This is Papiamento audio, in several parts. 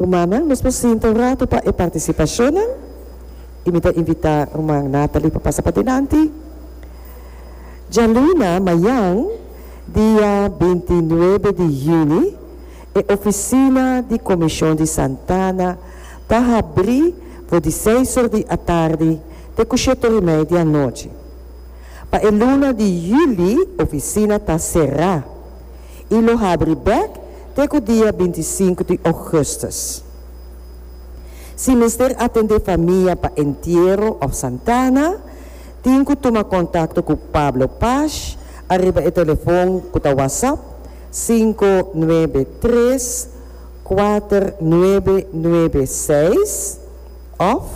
Rumannan, nos por sinta un ratu pa e participacionnan y mi ta invita Ruman Nathalie pa pasa padenanti. Djaluna, mayan dia binti nuebe di juni e oficina di Comision di Santana ta habri for di seis or di atardi te cu shiet or y mei di anochi. Pa e luna di juli oficina ta cera. i lo habri bek te ku dia binti i sinku di ougùstùs. Si mester atendé famia pa entiero òf Santana, tin ku tuma kontakto ku Pablo Pash ariba e telefòn ku ta WhatsApp sinku nuebe tres kuater nuebe nuebe seis òf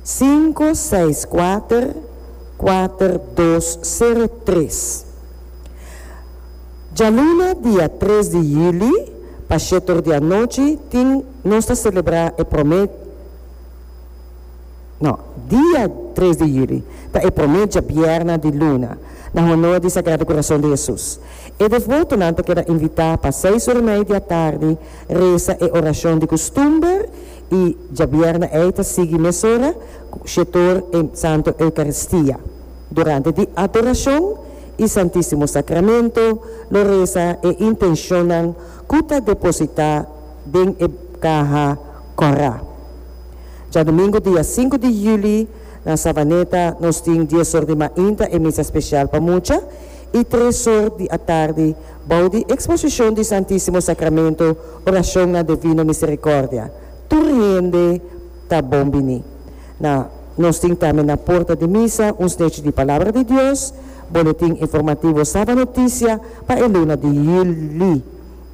sinku seis kuater kuater dos sero tres. Djaluna dia tres di juli pa shetor di anochi tin nos ta selebrá e promé no dia tres di juli ta e promé djabièrna di luna na honor di Sagrado Corazon di Hesus. E devoto nan ta keda invitá pa seis ora mei di atardi resa e orashon di kustumber i djabièrna ei ta sigui mesora ku shetor e Santo Eukaristia. Durante di adorashon. i Santísimo Sacramento lo reza e intencionnan cu ta depositá den e caha corá. Djadomingo dia sinku di juli na Savaneta nos tin dies or di mainta e misa special pa mucha i tres or di atardi bou di exposicion di Santísimo Sacramento oracionnan de Vino Misericordia. Tur hende ta bon bini. Na nos tin tambe na porta di misa un snechi di Palabra di Dios, boletin informativo Saba Notisia pa e luna di Juli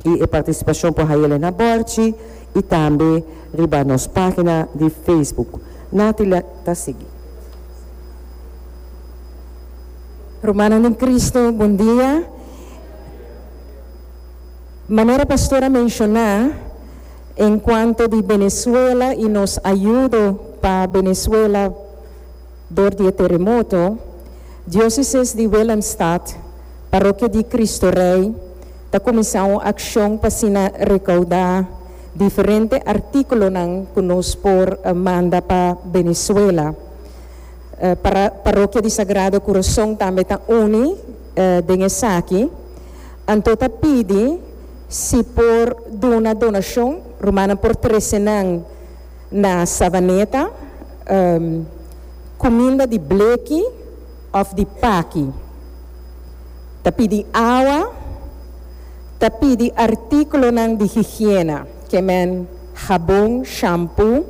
i e participacion por haya ley na bordchi i tambe riba nos pagina di Facebook. Natila ta sigui. Rumannan den Cristo, bon dia. Manera Pastor a menciona. En cuanto di Venezuela y nos ayudo pa Venezuela dor di e teremoto, Diócesis di Willemstad, Parokia di Cristo Rey, ta cuminsa un accion pa asina recauda diferente artículonan cu nos por manda pa Venezuela. Para Parokia di Sagrado Corazón tambe ta uni den esaki, anto ta pidi. Si por duna donacion, rumannan por trece nan na Savaneta cuminda di bleki of di paki. Ta pidi awa, ta pidi articulonan di higiena, ke men jabon, shampoo,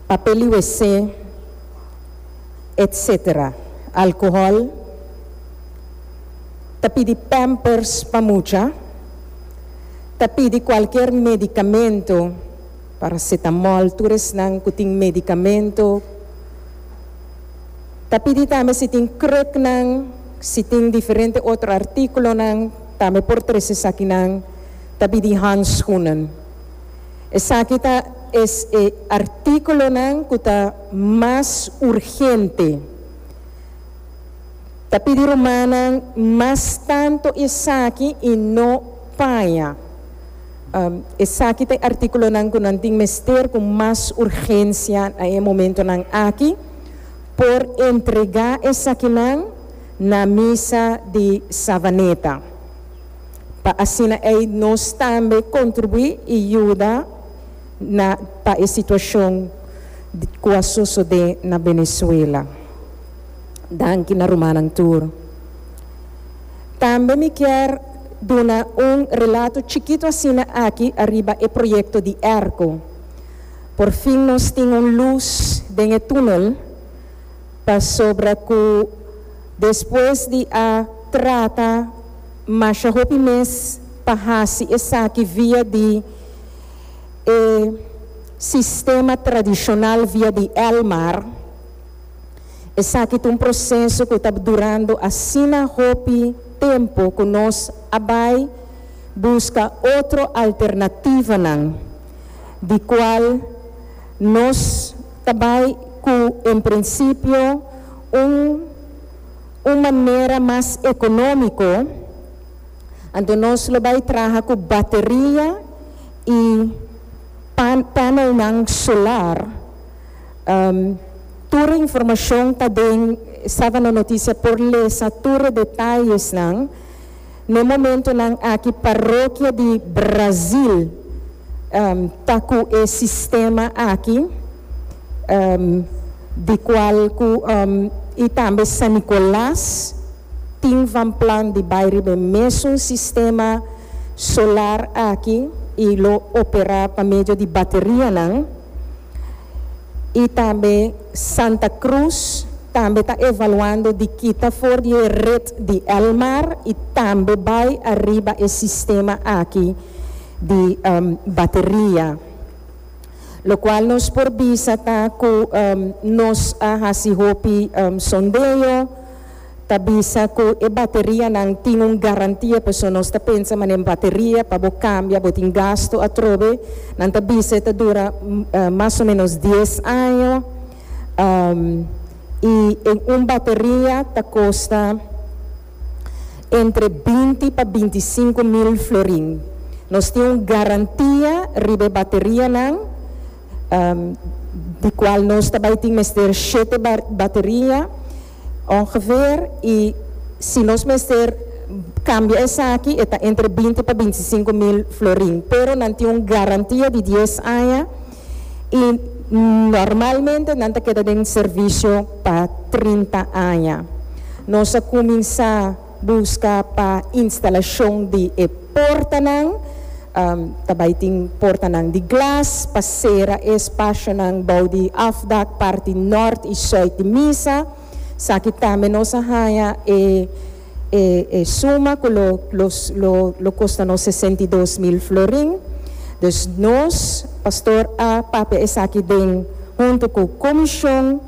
papel di WC, etc. Alcohol. ta pidi pampers pa mucha, ta pidi cualkier medicamento, paracetamol, tur esnan cu tin medicamento, ta pidi tambe si tin kruknan, si tin diferente otro articulonan, tambe por trece esakinan, ta pidi handschoenen. Esaki ta es e articulonan cu ta mas urgente. Ta pidi rumannan mas tanto esaki y no paña. Esaki ta e articulonan cu nan tin mester cu mas urgencia na e momentonan aki. Por entrega esakinan na Misa di Savaneta pa asina ey nos tambe contribui y yuda na pa e situacion cu a sosode na Venezuela. Danki na rumannan tur. Tambe mi kier duna un relato chikito asina aki ariba e proyecto di Erco. Por fin nos tin un luz den e tunel pasobra cu despues di a trata masha hopi mes pa haci esaki via di e sistema tradicional via di el mar, Esaki ta un proseso ku ta durando asina hopi tempu ku nos a bai buska otro alternativanan di kual nos ta bai ku en prinsipio un un manera mas ekonómiko, anto nos lo bai traha ku bateria i pan panelnan solar. Tur e informashon ta den Savana Notisia por lesa tur e detayesnan na e momentonan aki parokia di Brazil ta ku e sistema aki di kual ku i tambe San Nikolas tin van plan di bai riba e mesun sistema solar aki i lo opera pa medio di baterianan. y tambe Santa Cruz tambe ta evaluando di kita for di e red di El Mar y tambe bay ariba e sistema aki di bateria. Lo cual nos por bisa ta cu nos a haci hopi sondeo. ta bisa cu e baterianan tin un garantia pasobra nos ta pensa ma den bateria pa bo cambia bo tin gasto atrobe nan ta bisa e ta dura mas o menos dies año y en un bateria ta costa entre binti pa binti sinku mil florin nos tin un garantia riba e baterianan di cual nos ta bay tin mester shete bateria. Ongeveer y si nos mester cambia esaki e ta entre binti pa binti sinku mil florin pero nan tin un garantia di dies aña y normalmente nan ta keda den servicio pa trinta aña. Nos a cuminsa. Buska pa instalashon di e portanan, ta bai tin portanan di glas pa sera e spashonan bou di afdak parti nort i soit di misa. Saki tambe nos a haña e e suma ku lo lo lo kosta nos sesenta i dos mil florin. Dus nos, pastor, a papia esaki den huntu ku komishon.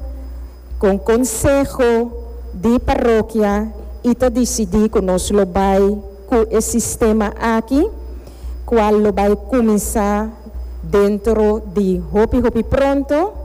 con conseho di parokia y ta dicidi cu nos lo bay cu e sistema aki cual lo bay cuminsa dentro di hopi hopi pronto.